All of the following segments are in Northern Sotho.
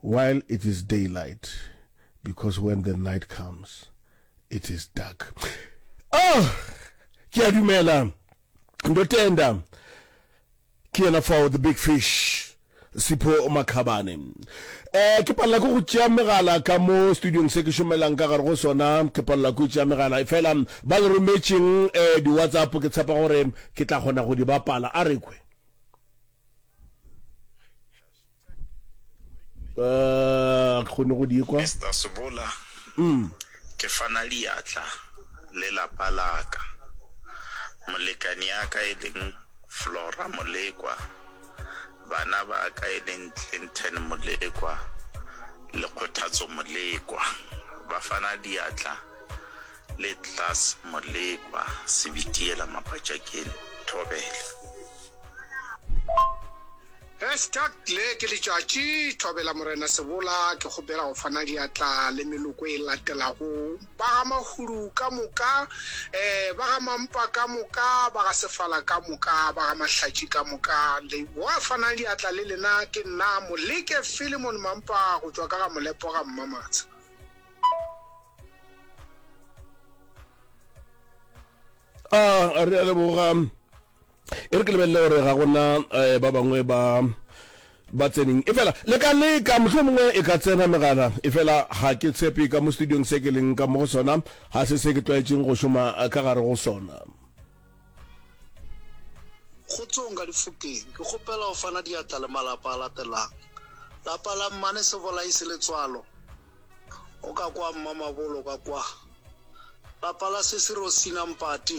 While it is daylight, because when the night comes, it is dark. Oh! Ke a dumela. Ndo tenda. Ke yena fao, the big fish. Sipho Makhabane. Eh, ke palela ko go tšea megala ka mo studiong se ke šomelang ka gare go sona, ke palela ko tšea megala. Efela ba le rometšeng eh di-WhatsApp ke tshepa gore ke tla kgona go di bapala. A re kwe. uh, kgone go di kwa Mr. Sobola, mm. ke fana diatla le lapa laka, molekani yaka e leng Flora Molekwa, bana ba ka e leng Clinton Molekwa le Kgothatso Molekwa, ba fana diatla le Tlas Molekwa, Sebitiela Mapatšakeng, Thobela. Hashtag Le ke letšatši, Thobela Morena Sebola, ke kgopela go fana diatla le meloko e latelago, ba ga Mahudu ka moka, ba ga Mampa ka moka, ba ga Sefala ka moka, ba ga Mahlatši ka moka. Leboa fanang diatla le lena ke nna Moleke Philemon Mampa go tšwa ka ga Molepo ga Mmamatsha. A re a leboga. e re ke lebelele gore ga gona eh, ba bangwe ba ba tseneng e fela le ka leka motlho mongwe e ka tsena megala e fela ga ke tshepe ka mo studiong se ke leng ka mo go sona ga se se ke tlwaetseng go šoma ka gare go sona kgotsong ka difokeng ke kgopela go fana diatla le malapa a latelang lapa la mmane se bolai se letswalo o ka kwa mmamabolo ka kwa lapa la sesiro sinampati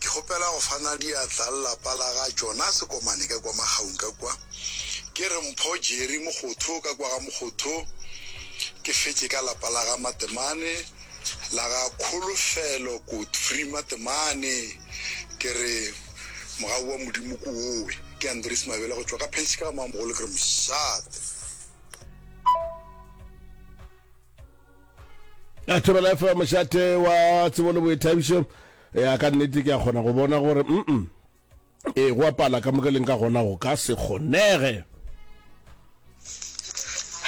Ke kgopela go fana diatla le lapa la ga Jonase Komane ka kwa Makgaung ka kwa. Ke re Mpho Jerry Mogotho ka kwa ga Mogotho. Ke fetše ka lapa la ga Matemane, la ga Kholofelo Godfrey Matemane. Ke re mogau wa Modimo ko owe. Ke Andries Mabele go tšwa ka Phentšhika ga Mamogolo. Ke re mošate. a thobela efa mošate wa tsebo le boithabišo ya ka nnete ke a kgona go bona gore mm e go apala ka moka leng ka gona go ka se kgonege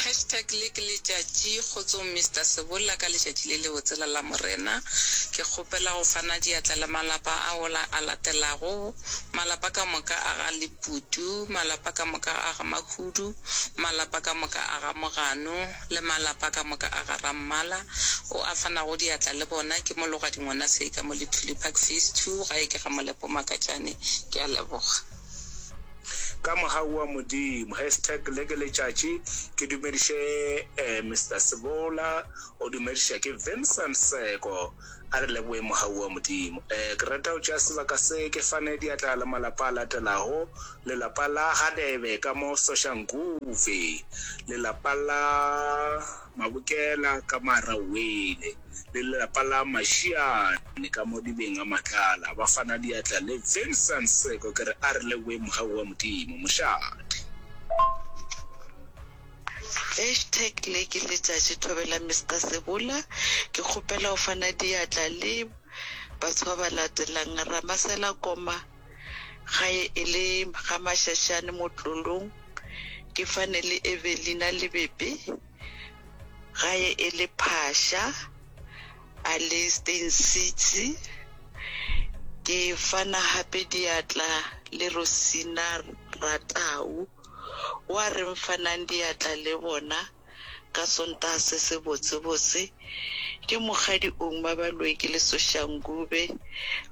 hashtag le ke letšatši kgotsong mr sebolla ka letšatši le le botsela la morena ke kgopela go fana diatla le malapa a ola a latelago malapa ka moka a ga leputu malapa ka moka a ga mahudu malapa ka moka a ga mogano le malapa ka moka a ga Rammala, o a fanago diatla le bona, ke mo loga dingwana se ka mo le Tulipac Phase Two, gae ke ga Molepo Makatšane. Ke a leboga. Ka moga oa Modimo. Hashtag le ke letšatši ke dumediše Mister Sebola, o dumediša ke Vincent Seko. A re leboge mogau wa Modimo. Ee, ke rata go tšea sebaka se ke fane diatla le malapa a latelago, lelapa la Hadebe ka mo Soshanguve, lelapa la Mabokela ka mo Arawele, le lelapa la Mashiane ka mo Dibeng a Matlala. Ba fana diatla le Vincent Seko. Ke re a re leboge mogau wa Modimo. Mošate. Hashtag Le ke letšatši thobela Mister Sebula ke kgopela o fana diatla le batho ba ba latelang Ramasela Koma gae e le ga Mashashane Motlolong ke fane le Evelina Lebebe gae e le Phasha a le Steyn City ke fana gape diatla le Rosina Ratau. O a reng fanang diatla le bona ka Sontaga se se botsebotse. Ke Mokgadi Ouma Baloeki le Sosha Ngube.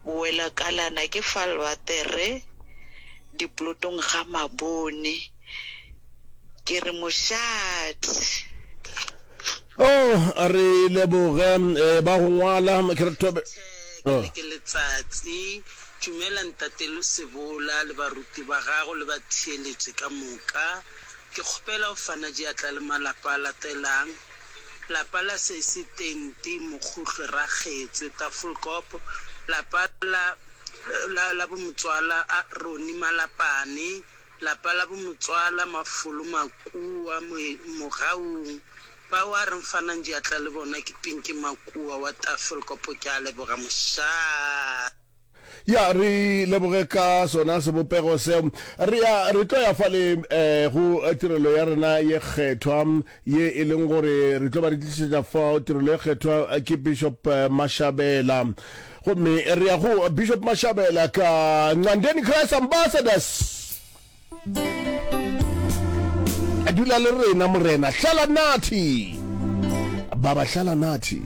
Bowelakalana ke fa Lwatere diplotong ga Mabone. Ke re moshate. Oh, re leboge ba go ngwala. Ke re thobe. Ke re ke letsatsi. Dumela Ntate Losebola le baruti ba gago le batheeletši ka moka. Ke kgopela go fana diatla le malapa a latelang, lapa la Sesi, Tenti, Mokhuhlwe, Rakgetswe, Tafelkop, lapa la la la bomotswala a Ronnie Malapane, lapa la bomotswala Mafolo Makua, Moe, Mogaung. Bao a re nfanang diatla le bona ke Pinki Makua wa Tafelkop. Ke a leboga, mošaa. Ya, re leboge ka sona sebopego seo. Re ya, re tlo ya fale eh, go tirelo ya rena ye kgethwa, ye e leng gore re tlo ba re tlišetša fao. Tirelo ye kgethwa eh, ke Bishop eh, Mashabela. Gomme re ya go Bishop Mashabela ka Nqandeni Christ Ambassadors. Dula le rena Morena. Hlala nathi. Baba, hlala nathi.